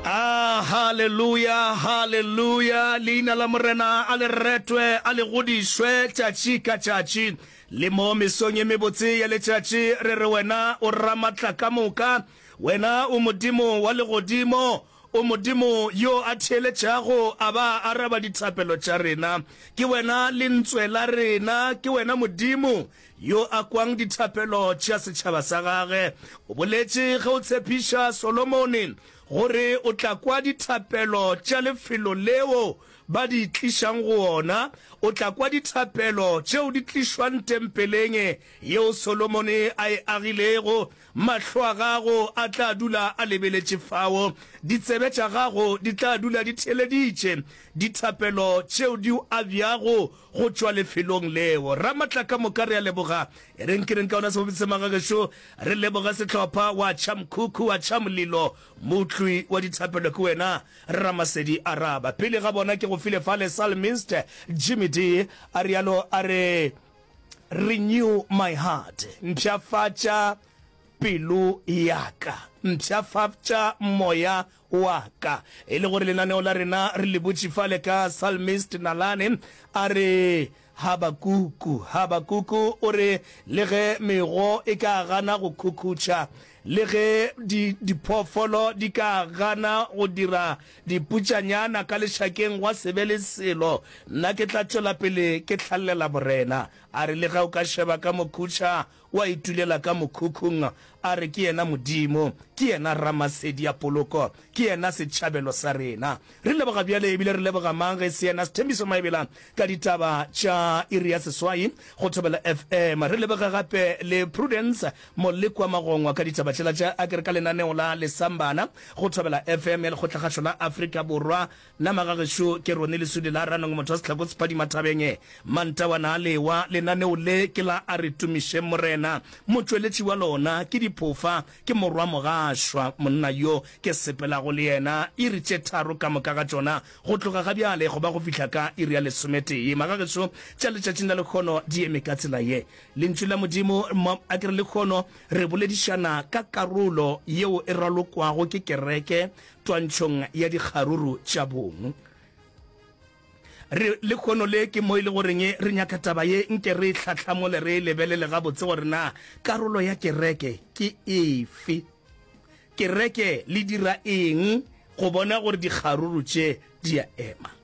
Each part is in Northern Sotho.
Ah, haleluya, haleluya. Leina la Morena a le retwe, a le godišwe tšatši ka tšatši. Le mo mesong ye mebotse ya letšatši re re wena o ramatla ka moka. Wena o Modimo wa legodimo, o Modimo yo a theeletšago a ba a araba dithapelo tša rena. Ke wena lentswe la rena, ke wena Modimo yo a kwang dithapelo tša setšhaba sa gagwe, o boletše ge o tshepiša Solomone gore o tla kwa dithapelo tša lefelo leo ba di tlišang go ona, o tla kwa dithapelo tšeo di tlišwang tempeleng yeo Solomone a e agilego Mahlo a gago a tla dula a lebeletše fao, ditsebe tša gago di tla dula di theeleditše dithapelo tšeo di o abjago go tšwa lefelong leo. Ramatla ka moka re a leboga. E reng ke reng ka ona sebopedi se maga gešo? Re leboge sehlopha wa tšha mkhukhu wa tšha mlilo, motlwi wa dithapelo ke wena Ramasedi Araba. Pele ga bona ke go file fale Psalmist Jimmy Dee a realo a re. Renew my heart, mpshafatša pelo ya ka, mpshafatša moya wa ka. E le gore lenaneo la rena re le butše fale ka psalmist Nalane a re, Habakuku, Habakuku o re, le ge mego e ka gana go khukhutša, Le ge di, diphoofolo di ka gana go dira diputšanyana ka lešakeng, gwa se be le selo. Nna ke tla tšwela pele ke hlalela Morena. A re, Lega o ka šeba ka mokhutšha, wa itulela ka mokhukhung. A re, Ke yena Modimo. Ke yena Ramasedi ya poloko. Ke yena setšhabelo sa rena. Re leboga bjale, e bile re leboga mang ge e se yena Sthembiso Maebela ka ditaba tša iri ya seswai go Thobela FM. Re leboge gape le Prudence Molekwa Magongwa ka ditaba tšela tša Agri ka lenaneo la Lesambana go Thobela FM ya Lekgotlakgašo la Afrika Borwa. Na magagešo ke Ronnie Lesudi la Ranong motho wa sehlako se phadima thabeng? Mantawana a lewa, lenaneo le ke la A Re Tumišeng Morena. Motšweletši wa lona ke diphofa, ke morwa mogašwa, monna yo ke sepelago le yena iri tše tharo ka moka ga tšona go tloga ga bjale go ba go fihla ka iri ya lesometee. Magagešo tša letšatšing la lekgono di eme ka tsela ye. Lentšu la Modimo, mo a ke re lekgono, re boledišana ka karolo yeo e ralokwago ke kereke twantšhong ya dikgaruru tša bong. Re lekgono le ke mo e le goreng re nyaka taba ye nke re e hlahlamole re e lebelele gabotse gore na karolo ya kereke ke efe. Kereke le dira eng go bona gore dikgaruru tše di a ema.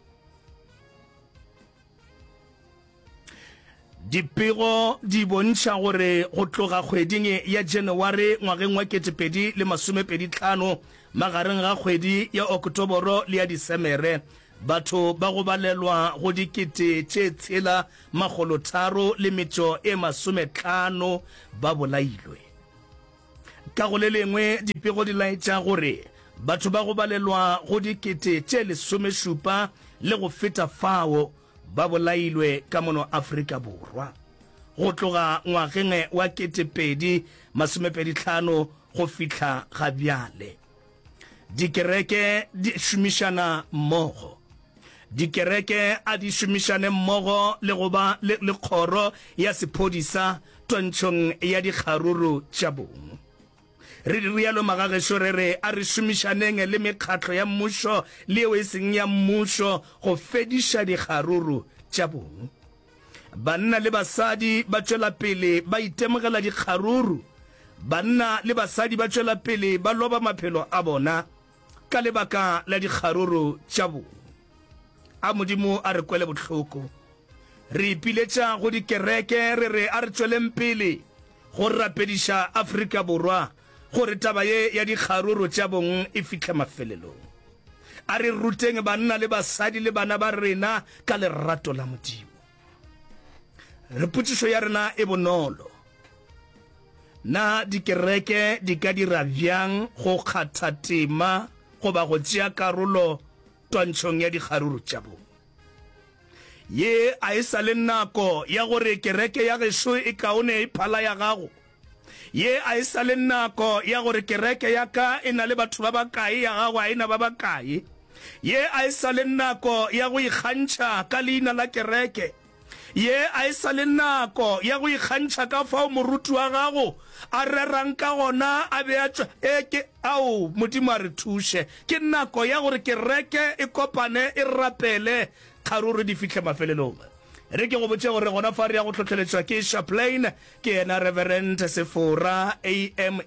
Dipego di bontšha gore go tloga kgweding ya Janaware ngwageng wa 2025, magareng ga kgwedi ya Okotoboro le ya Disemere, batho ba go balelwa go dikete tše tshela makgolo tharo le metšo e masometlhano ba bolailwe. Ka go le lengwe, dipego di laetša gore batho ba go balelwa go dikete tše lesomešupa le go feta fao ba bolailwe ka mono Afrika Borwa. Go tloga ngwageng wa 2025 go fihla ga bjale, dikereke di šomišana mmogo. Dikereke a di šomišane mmogo le go ba le kgoro ya sephodisa twantšhong ya dikgaruru tša bong. Re di realo magagešo re re a re šomišaneng le mekgatlo ya mmušo le yeo e seng ya mmušo go fediša dikgaruru tša bong. Banna le basadi ba tšwela pele ba itemogela dikgaruru. Banna le basadi ba tšwela pele ba loba maphelo a bona. Ka lebaka la dikgaruru tša bo a Modimo a re kwele bohloko. Re ipiletša go dikereke re re a re tšweleng pele go rapediša Afrika Borwa gore taba ye ya dikgaruru tša bong e fihle mafelelong. A re ruteng banna le basadi le bana ba rena ka lerato la Modimo. Re potšišo ya rena e bonolo. Na dikereke di ka dira bjang go kgatha tema goba go tšea karolo twantšhong ya dikgaruru tša bong? Ye a e sa le nako ya gore kereke ya gešo e kaone e phala ya gago. Ye a e sa le nako ya gore kereke ya ka e na le batho ba bakae, ya gago a e na ba bakae. Ye a e sa le nako ya go ikgantšha ka leina la kereke. Ye a e sa le nako ya go ikgantšha ka fao moruti wa gago a rerang ka gona a be a tšwa. E ke, ao, Modimo a re thuše. Ke nako ya gore kereke e kopane, e rapele, kgaruru di fihle mafelelong. Re ke go botše gore gona fa re ya go hlohleletšwa ke Chaplain, Ke yena Reverend Sefora, AMA,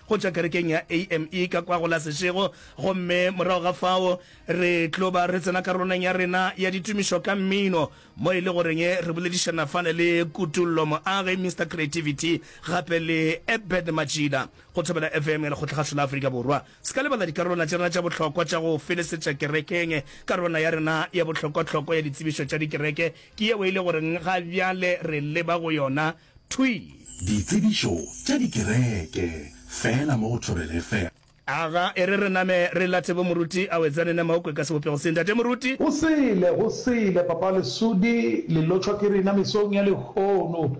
go tšwa kerekeng ya AME ka kwa go la Sešego, gomme morago ga fao re tlo ba re tsena karolong ya rena ya ditumišo ka mmino, mo e le goreng re boledišana fale le Kutollo Moage, Mister Creativity, gape le Ebed Matšila, go Thobela FM ya Lekgotlakgašo la Afrika Borwa. Se ka lebala dikarolwana tša rena tša bohlokwa tša go felesetša kerekeng, karolwana ya rena ya bohlokwahlokwa ya ditsebišo tša dikereke, Ke yeo e le gore ga bjale re leba go yona. Thwi! Ditsebišo tša dikereke fela mo go Thobela FM. Aga, e re re name re late bo Moruti a wetsane ne maokwe ka sebopego se. Ntate Moruti! Go sele, go sele, Papa Lesudi, le lotšhwa ke rena mesong ya lehono.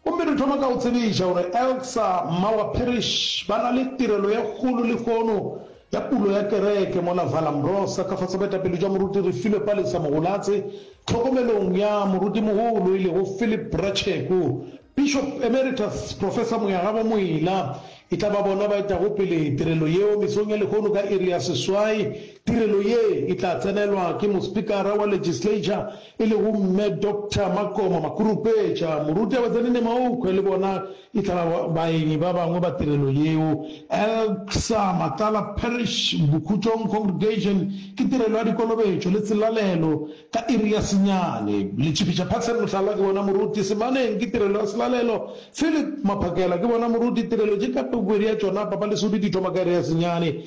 Gomme re thoma ka go tsebiša gore Elsa mma wa Parrish ba na le tirelo ye kgolo lehono ya pulo ya kereke mola Vallombrosa ka fase boetapele bja Moruti re filwe Palesa Mogolatse tlhokomelong ya Morutimogolo e lego Philip Bracheku, Bishop Emeritus Professor Moyagabo Moila. E tla ba bona ba etago pele tirelo yeo mesong ya lehono ka iri ya seswai. Tirelo ye e tla tsenelwa ke Mospikara wa Legislature e lego Mme Doctor Makoma Makurupetša, moruti Abetsani Nemaukhwe le bona e tla ba baenyi ba bangwe ba tirelo yeo. Elcsa Matlala Parish Bokhutšong Congregation ke tirelo ya dikolobetšo le tselalelo ka iri ya senyane. Letšipitša Paxson Mohlala ke bona moruti, Semaneng ke tirelo ya selalelo, Phillip Maphakela ke bona moruti, tirelo tše ka pego iri ya tšona, Papa Lesodi di thoma ka iri ya senyane.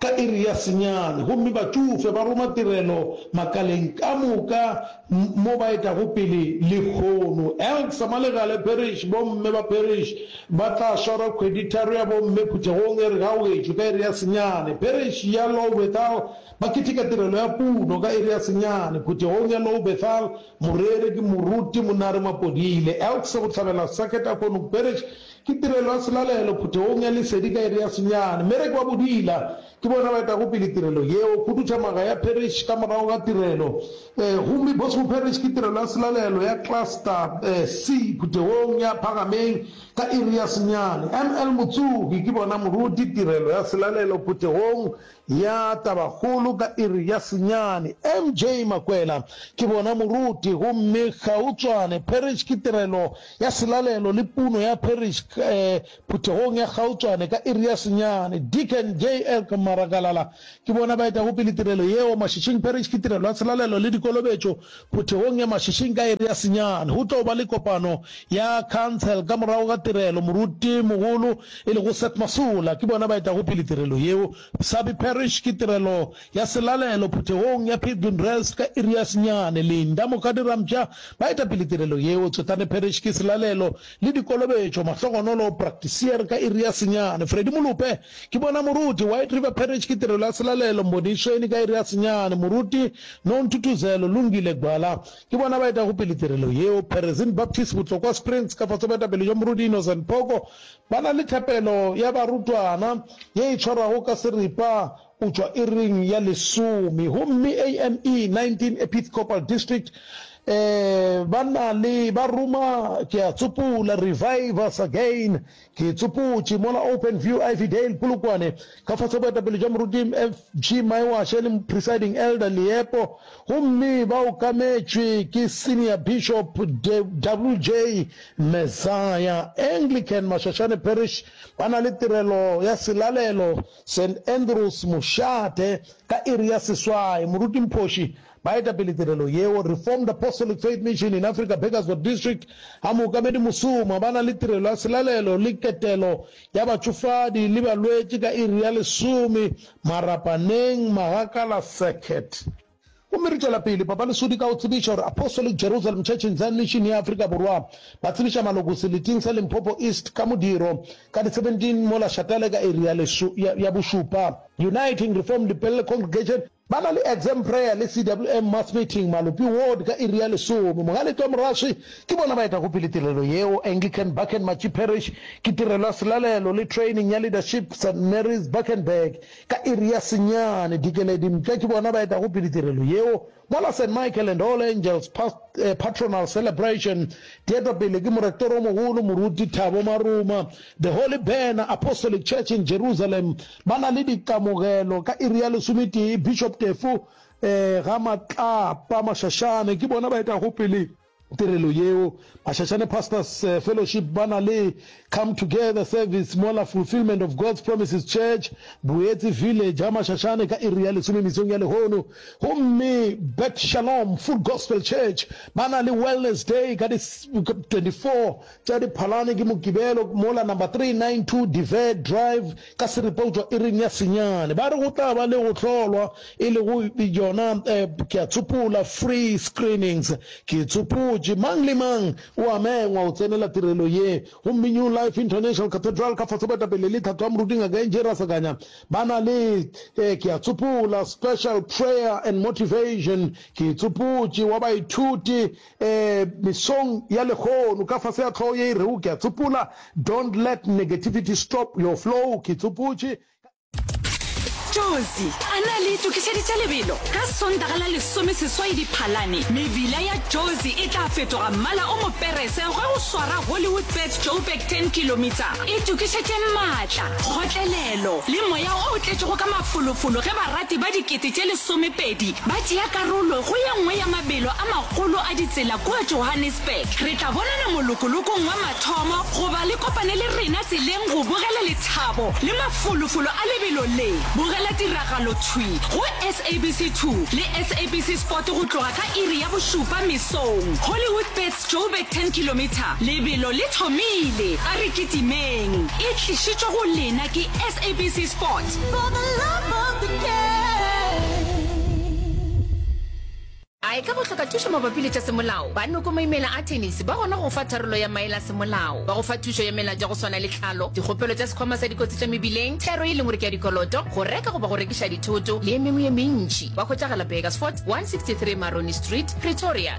ka iri ya senyane gomme batšofe ba roma tirelo makaleng ka moka mo ba etago pele lehono. Elk sa Malegale Parish, Bomme ba Parish ba tla swara kgweditharo ya bomme phuthegong e re ga wetšo ka iri ya senyane. Parish ya Lowbethal ba keteka tirelo ya puno ka iri ya senyane phuthegong ya Lowbethal. Moreri ke Moruti Monare Mapodile. Elk sa Bohlabela Circuit Akonuk Parish Ke tirelo ya selalelo phuthegong ya lesedi ka iri ya senyane. Mereki wa bodila ke bona ba etago pele tirelo yeo, khuduthamaga ya parish ka morago ga tirelo. Ee, gomme Bosco Parish ke tirelo ya selalelo ya Cluster C phuthegong ya phagameng ka iri ya senyane. ML Motsugi ke bona moruti tirelo ya selalelo phuthegong Ya tabakgolo ka iri ya senyane. MJ Makwela, Ke bona moruti gomme gautšwane Parish ke tirelo ya selalelo le puno ya Parish phuthegong ya gautšwane ka iri ya senyane. Deacon JL Maragalala, Ke bona baetagopele tirelo yeo Mashishing Parish ke tirelo ya selalelo le dikolobetšo Phuthegong ya mašešing ka iri ya senyane, go tlo ba le kopano ya khansele ka morago ga tirelo. Moruti-mogolo, e lego Seth Masola, ke bona ba etago pele tirelo yeo. Sabi Parish ke tirelo ya selalelo phuthegong ya Pilgrim Rest ka iri ya senyane. Linda Mokgadirampša ba eta pele tirelo yeo. Tswetane Parish ke selalelo le dikolobetšo, mahlogonolo, practisier, ka iri ya senyane. Freddy Molope. Ke bona moruti. White River Parish ke tirelo ya selalelo Mbonishweni ka iri ya senyane. Moruti, No Ntuthuzelo, Lungile Gwala ke bona ba etago pele tirelo yeo. Perezin Baptist Botlokwa Springs ka fase boetapele jwa Moruti Innocent Phoko ba na le thapelo ya barutwana ye e tshwarwago ka seripa go tšwa iring ya lesome. Gomme AME 19 Epithcopal District ba na le ba ruma, ke a tsopola, Revive Us Again Ke itsopotše mola Open View Ivy Dale Polokwane ka fase boetapele bja Moruti FG Maiwashe le Presiding Elder Leepo gomme ba okametšwe ke Senior Bishop WJ Messiah. Anglican Mashashane Parish ba na le tirelo ya selalelo St Andrews Mošate ka iri ya seswai. Moruti Mphoši Baetapele tirelo yeo, Reformed Apostolic Faith Mission in Africa Burgersdorp District, a mookamedi mosoma, ba na le tirelo ya selalelo le ketelo ya batšofadi le balwetši ka iri ya lesome Marapaneng, Magakala Circuit. Gomme re tšwela pele Papa Lesudi ka go tsebiša gore Apostolic Jerusalem Church in Zion Mission ya Afrika Borwa ba tsebiša maloko seleting sa Limpopo East ka modiro ka di 17 mola Shatale ka iri ya bošupa. Uniting Reformed Pelle Congregation, Ba na le Exam Prayer le CWM Mass Meeting, Malopi Ward, ka iri ya lesome. Mogaletwa Moraswi ke bona ba etago pele tirelo yeo. Anglican Bakenmachi Parish ke tirelo ya selalelo le training ya leadership, St Mary's, Bakenberg, ka iri ya senyane. Dikeledi Mpša ke bona ba etago pele tirelo yeo. Mola St Michael and All Angels Past, Patronal Celebration di etwa pele ke Morektoromogolo Moruti Thabo Maruma. The Holy Banner Apostolic Church in Jerusalem Ba na le dikamogelo ka iri ya lesometee, Bishop Tefo um Gamatlapa Mashashane ke bona ba etago pele tirelo yeo. Mashashane Pastors eh, Fellowship ba na le Come Together Service mola Fulfillment of God's Promises Church, Boetsi Village ga Mashashane ka iri ya lesome mesong ya lehono. Gomme Bet Shalom Full Gospel Church ba na le Wellness Day ka di 24 Tša Diphalane ke Mokibelo mola number 392 De Vere Drive ka Seripa go tšwa iring ya senyane. Ba re go tla ba le go hlolwa e lego yona ke a tsopola free screenings. Ke tsopotše, mang le mang o a mengwa go tsenela tirelo ye. Gomme New Life International Cathedral ka fase boetapele le Tlhatho ya Moruti Ngaka Angie Rasakanya ba na le ke a tsopola special prayer and motivation. Ke tsopotše wa baithuti Ee, mesong ya lehono, ka fase ga hlogo ye e rego Ke a Tsopola, Don't Let Negativity Stop Your Flow, ke tsopotše ka. Jozi a ne a le itokišeditše lebelo. Ka Sontaga la lesomeseswai Diphalane, mebila ya Jozi e tla fetoga mmala o moperese ge go swara Hollywoodbets Joburg Ten Kilometre e tokišetše maatla, kgotlelelo le moya o tletšego ka mafolofolo ge barati ba dikete tše lesomepedi Ba tšea karolo go ye nngwe ya mabelo a magolo a ditsela kua Johannesburg. Re tla bonana molokolokong wa mathomo goba le kopane le rena tseleng go bogela lethabo le mafolofolo a lebelo le. Bogela tiragalo thwi go SABC 2 le SABC Sport go tloga ka iri ya bošupa mesong. Hollywoodbets. Joburg 10 kilometre, lebelo le thomile, a re kitimeng. E tlišitšwe go lena ke SABC Sport. For the love of the A e ka go hloka thušo mabapi le tša semolao, ba Noko Maimela a Tennis ba gona go go fa tharollo ya maele a semolao. Ba go fa thušo ya melato ya go swana le tlhalo, dikgopelo tša sekhwama sa dikotsi tša mebileng, thero e leng gore ke ya dikoloto, go reka goba go rekiša dithoto le e mengwe ye mentši. Ba hwetšagala Burgersfort 163 Maroni Street, Pretoria.